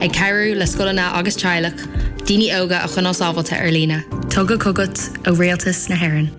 Ag cabhrú le scoileanna agus teaghlaigh daoine óga a choinneáil sábháilte ar líne. Tugtha chugat ó Rialtas na hÉireann.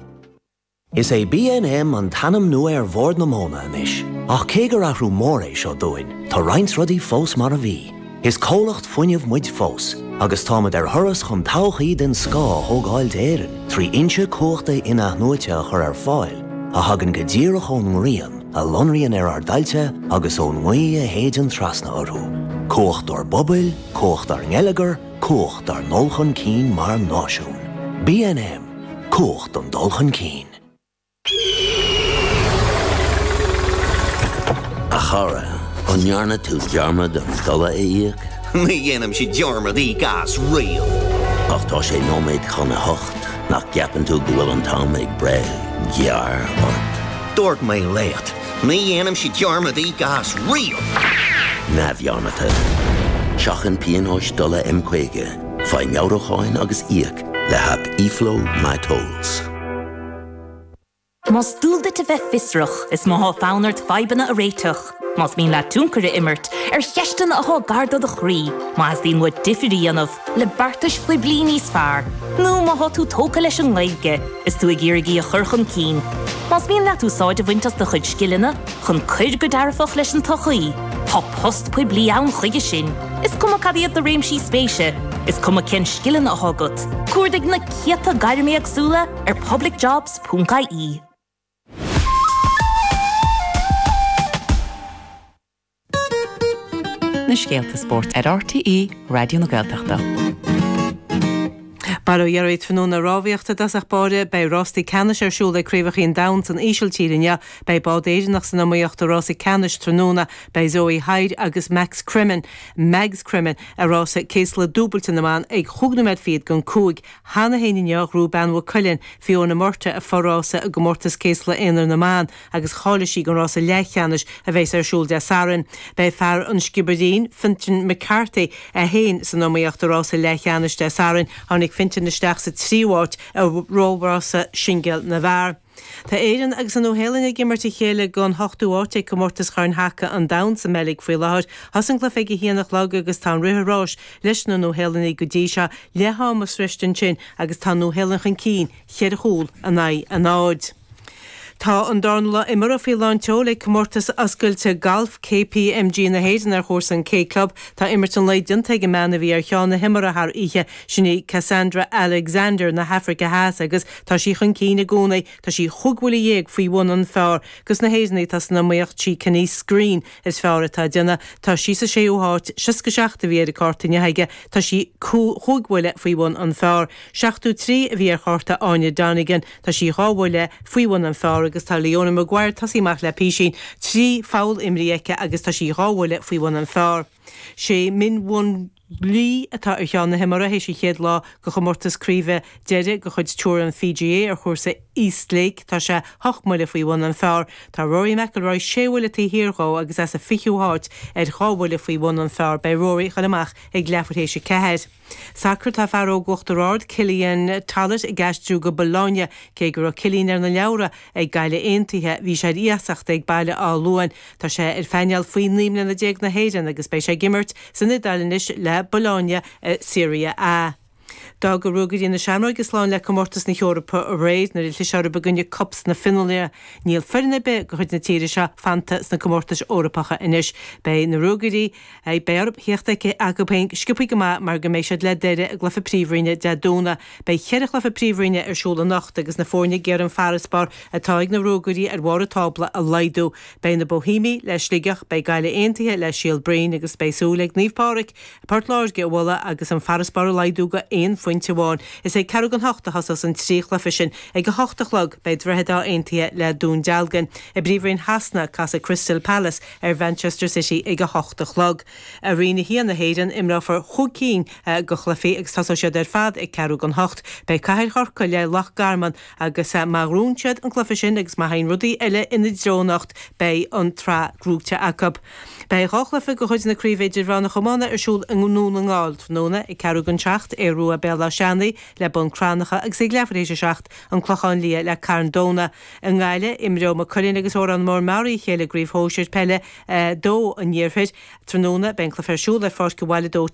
Is é BNM an t-ainm nua ar Bhord na Móna anois, ach cé gur athrú mór é seo dúinn, tá roinnt rudaí fós mar a bhí. Is comhlacht fuinnimh muid fós, agus táimid ar thuras chun todhchaí den scoth a thógáil d'Éirinn trí fhoinse cumhachta in-athnuaite a chur ar fáil a thagann go díreach ón ngrian, a lonraíonn ar ár dtailte agus ón ngaoth a shéideann trasna orthu, cumhacht ár bpobail, cumhacht ár ngeilleagar, cumhacht ár ndul chun cinn mar náisiún. BNM, Cumhacht an dul chun cinn. A chara, an ndearna tú dearmad an dola a íoc? Ní dhéanaimse dearmad íoc as riamh. Ach tá sé nóiméad chun a hocht, nach gceapann tú go bhfuil an t-am ag breith gearr ort? Dúirt mé leat, ní dhéanaimse dearmad íoc as riamh! neamhdhearmadta. Seachain pionóis dola M50, faigh meabhrúcháin agus íoc le haip eFlow My Tolls. Más dual duit a bheith fiosrach, is má tá fonn ort fadhbanna a réiteach, Más mian leat tionchar a imirt ar cheisteanna atá gar do do chroí, má theastaíonn uait difear a dhéanamh le beartais phoiblí níos fearr, nó má tá tú tógtha leis an nGaeilge is tú ag iarraidh í a chur chun cinn, más mian leat úsáid a bhaint as do chuid scileanna chun cur go dearfach leis an tsochaí, tá post poiblí ann chuige sin, is cuma cad iad do réimsí spéise, is cuma cén scileanna atá agat. Cuardaigh na céadta gairm éagsúla ar publicjobs.ie. na scéalta spóirt ar RTÉ Raidió na Gaeltachta. Go maire tú a dheartháir tráthnóna rámhaíocht a dtosach báire, beidh Rásaí Ceannais ar siúl ag Craobhacha an Domhain san Ísiltír inniu, beidh bád Éireannach san iomaíocht do Rásaí Ceannais tráthnóna, beidh Zoe Hyde agus Max Cremen, Mags Cremen, a rása céaslaigh dúbailte na mban ag chúig nóiméad fichead gon cúig Cheana féin inniu, ghnóthaigh bean Mhaigh Cuilinn, Fiona Murtagh, a fo-rása i gComórtas Céaslaigh Aonair na mBan agus cháiligh sí don rása leathcheannais a bheas ar siúl Dé Sathairn. Beidh fear an Sciobairín, Fintan McCarthy, é féin san iomaíocht i rása leathcheannais Dé Sathairn, tháinig Fintan isteach sa tríú háit i réamhrása singil na bhfear. Tá Éireann agus an Nua Shéalainn ag imirt a chéile gon ochtú áit ag Comórtas Chorn Haca an Domhain sa mBeilg faoi láthair. Thosaigh an cluife ag a haon a chlog agus tá an rith ráis leis na Nua Shéalannaigh go dtí seo. Leath ama sroiste ansin agus tá an Nua Shéalainn chun cinn cheithre chúl in aghaidh a náid. Tá an darna lá imeartha faoi lán tseoil ag Comórtas Oscailte Gailf KPMG na hÉireann ar chúrsa an K Club. Tá imirt an lae déanta ag an mbean a bhí ar cheann na himeartha thar oíche, sin í Cassandra Alexander na hAfraice Theas agus Tá sí chun cinn i gcónaí, tá sí chúig bhuille dhéag faoi bhun an phar, gus na hÉireannaigh atá san iomaíocht sí Canice Screene is feárr atá ag déanamh, tá sí sa séú háit, seasca seacht a bhí ar a cárta inniu aige, tá sí chúig bhuille faoi bhun an phar, seachtó trí a bhí ar chárta Áine Donegan, tá sí dhá bhuille faoi bhun an phar agus tá Leona Maguire tosaithe amach le písín, trí pholl imrithe aici agus tá sí dhá bhuille faoi bhun an phar. Sé Min Woo Lee, atá ar cheann na himeartha théis an chéad lá de chomórtas craoibhe deiridh de chuid Tour an PGA ar chúrsa East Lake, tá sé hocht mbuille faoi bhun an phar. Tá Rory McIlroy sé bhuille taobh thiar dhó agus é sa 20ú háit, ar dhá bhuille faoi bhun an phar, beidh Rory ag dul amach ag leathuair théis a ceathair. Sacar Tá fear óg Uachtar Ard, Cillian Tollett, ag aistriú go Bologna. Cé go raibh Cillian ar na leabhra ag Gaillimh Aontaithe, bhí sé ar iasacht ag Baile Átha Luain Tá sé ar phainéal Faoi naoi mbliana déag na hÉireann agus beidh sé ag imirt san Iodáil anois le Bologna i Serie A. D'fhág Ruagairí na Seamróige slán le comórtas na hEorpa aréir nuair a chlis orthu i gcoinne KuPS na Fionlainne. Níl foireann ar bith de chuid na tíre seo fanta sna comórtais Eorpacha anois. Beidh na Ruagairí ag iarraidh a thíocht chucu féin sciopthaí go maith mar go mbeidh siad le Doire i gcluiche Príomhroinne Dé Domhnaigh. Beidh ceithre chluiche Príomhroinne ar siúl anocht agus na foirne ag iarraidh an farasbarr atá ag na Ruagairí ar bharr an tábla a laghdú. Beidh na Bohímigh le Sligeach, beidh Gaillimh Aontaithe le Síol Broin agus beidh súil ag Naomh Pádraig Port Láirge a bhualadh agus an farasbarr a laghdú go aon phointe amháin. Is ag ceathrú don ocht a thosós an trí chluiche sin. Ag a hocht a chlog beidh Droichead Átha Aontaithe le Dún Dealgan. I bPríomhroinn Shasana casfaidh Crystal Palace, ar Mhanchester City ag a hocht a chlog. I Roinn 1 na hÉireann, imreofar chúig cinn de chluichí agus tosóidh siad ar fad ag ceathrú don ocht. Beidh Cathair Chorcaí le Loch Garman agus má ghnóthaíonn siad an cluiche sin agus má théann rudaí eile ina dtreo anocht, beidh an tsraith gnóite acu. Beidh dhá chluiche de chuid na Craoibhe Idirmheánach Iomána ar siúl i nDún na nGall tráthnóna, ag ceathrú don seacht, Aodh Ruadh-Béal Átha Seanaidh le Bun Cranncha agus ag leath tar éis a seacht, An Clochán Liath le Carn Domhnach. I nGaillimh, imreoidh Maigh Cuilinn agus Órán Mór Meáraí a chéile i gCraobh Shóisir Peile 2 an Iarthair tráthnóna. Beidh an cluiche ar siúl ar pháirc an Bhaile Dóite.